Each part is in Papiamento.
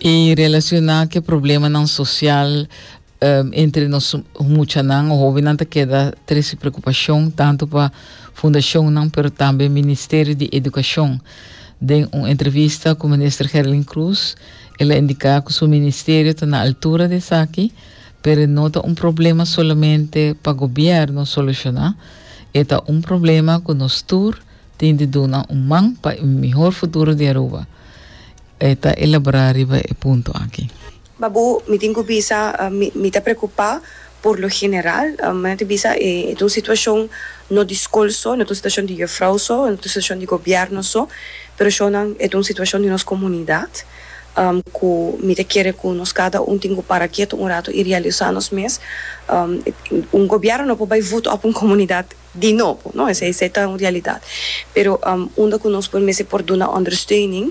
I relacioná cu e problemanan social um entre nos muchanan o hobennan ta keda tres di preocupacion tanto pa fundacionnan pero tambe Ministerio di Educacion. Den un entrevista cu Minister Gerlin Cruz, el a indica cu su ministerio ta na altura di esaki, pero no ta un problema solamente pa gobierno soluciona, e ta un problema cu nos tur Tin di duna un man pa e mihor futuro di Aruba. E ta elaborá riba e punto aki. Babu, mi tin ku bisa mi ta preokupá por lo general. Manan ta bisa e ta un situashon no di skol so, no ta un situashon di yefrou so, no ta un situashon di gobièrnu so, pero shownan e ta un situashon di nos komunidat ku mi ta kere ku nos kada un tin ku para ketu un ratu i realisá nos mes. Un gobièrnu no por bai vut òf un komunidat. di nobo, no? Esei esei ta un realidat. Pero unda ku nos por mester por duna ondersteuning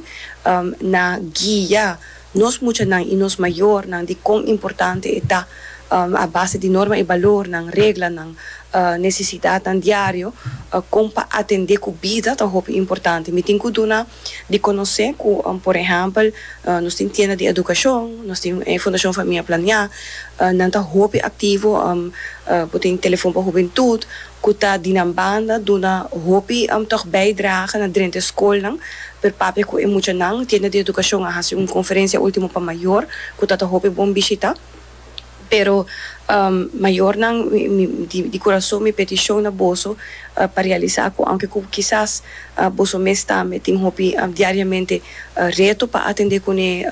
na guia nos muchanan i nos mayornan di kon importante e ta a base di norma i balornan, reglanan, nesesidatnan diario kon pa atendé ku bida ta hopi importante. Mi tin ku duna. di conoce cu por ehempel nos tin tienda di educacion, nos tin Fundacion Famia Plania, nan ta hopi activo, bo tin Telefon pa Hubentud cu ta di nan banda duna hopi tog bijdrage na drenta e scolnan per papia cu e muchanan, tienda di educacion a haci un conferencia ultimo pa mayor cu ta ta hopi bon bishita. Pero, mayornan, di kurason mi petishon na boso pa realisá ku aunke ku kisas boso mes tambe tin hopi diariamente reto pa atendé kuné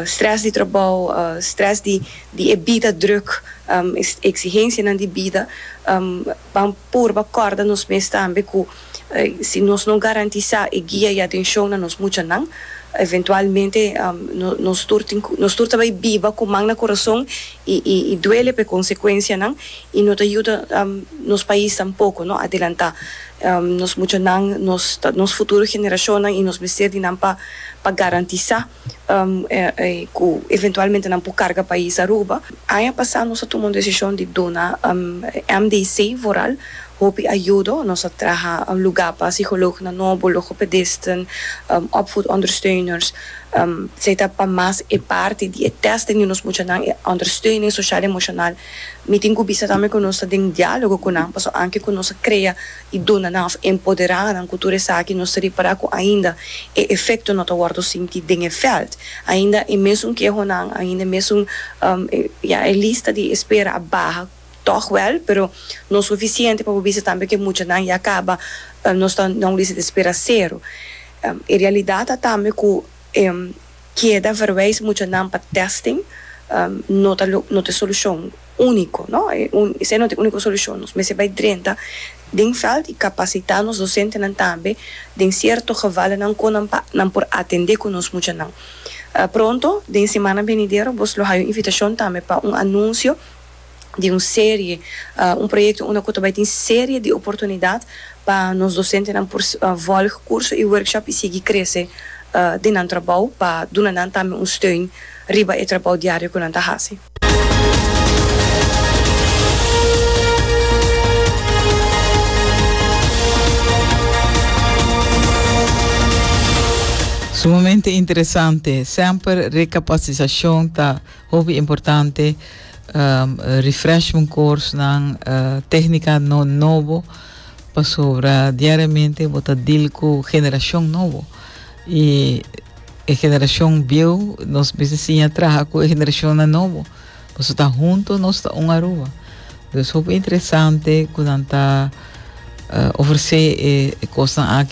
strès di trabou, strès di e bida drùk, eksigensianan di bida. pa purba kòrda nos mes tambe ku si nos no garantisá e guia i atenshon na nos muchanan, eventualmente nos tur tin ku nos tur ta bai biba ku man na kurason i duele pa e konsekuensianan i no ta yuda nos pais tampoko no adelantá nos muchanan, nos futuro generashonnan i nos mester di nan pa garantisá. ku eventualmente nan por karga pais Aruba. Aña pasá nos a tuma un desishon di duna MDC Vooral hopi ayudo. Nos a traha lugá pa sikolognan nobo, logopedisten, opvoedondersteuners. Esei ta pa mas e parti di e tèsten di nos muchanan, e ondersteuning sosial emoshonal. Mi tin ku bisa tambe ku nos ta den diálogo ku nan, pasobra anke ku nos a krea. i duna nan òf empoderá nan ku tur esaki, nos ta repará ku ainda e efekto no ta wòrdu sinti den e vèlt. Ainda e mesun kehonan, ainda e mesun, ya, e lista di espera a baha tòg wèl, pero no sufisiente pa bo bisa tambe ku e muchanan ya kaba, nos ta, nan lista di espera sero. E realidat ta tambe ku e keda verwijs muchanan pa testing no ta lo no ta e solucion unico no esai no ta e unico solucion nos mester bai drenta den veld y capacita nos docentenan tambe den cierto gevalonan con nan pa nan por atende cu nos muchanan pronto den semana venidero bo's lo hayo invitacion tambe pa un anuncio di un serie, un proyekto unda ku ta bai tin serie di oportunidat pa nos dosentenan por vòlg kurso i workshop i sigui krese den nan trabou pa duna nan tambe un steun riba e trabou diario ku nan ta hasi. Sumamente interesante! Semper rekapasisacion ta. Hopi importante refreshment course nan, tehnica no nobo pasobra diariamente bo ta deal cu generacion nobo y e generacion bieu nos mester siña traha cu e generacion nan nobo pasobra ta hunto nos ta un Aruba. Dus hopi interesante cu nan ta ofrece e cosnan aki.